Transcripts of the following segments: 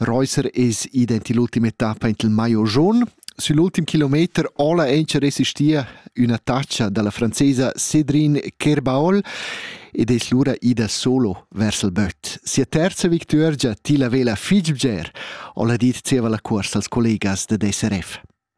Reusser es id aint ill'ultima etappa aint il maio jaun. Sün l'ultim kilometer ola auncha resistia üna taccia da la francesa Cédrine Kerbaol ed es lura ida solo vers il böt. Sia terza victuorgia tilla vela fich bger, ho la dit zieva la cuorsa als collegas da DSRF.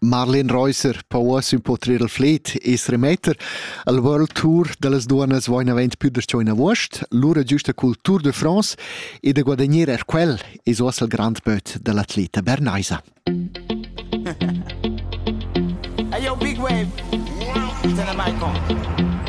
Marlene Reusser po uossa impau trer il fled e seremetter. El World Tour dallas duonnas va inavant pü darcheu in avuost, lura giüsta cul Tour de France e da guadagner er quel es uossa il grand böt da l'atleta bernaisa. hey yo, big wave, turn the mic on.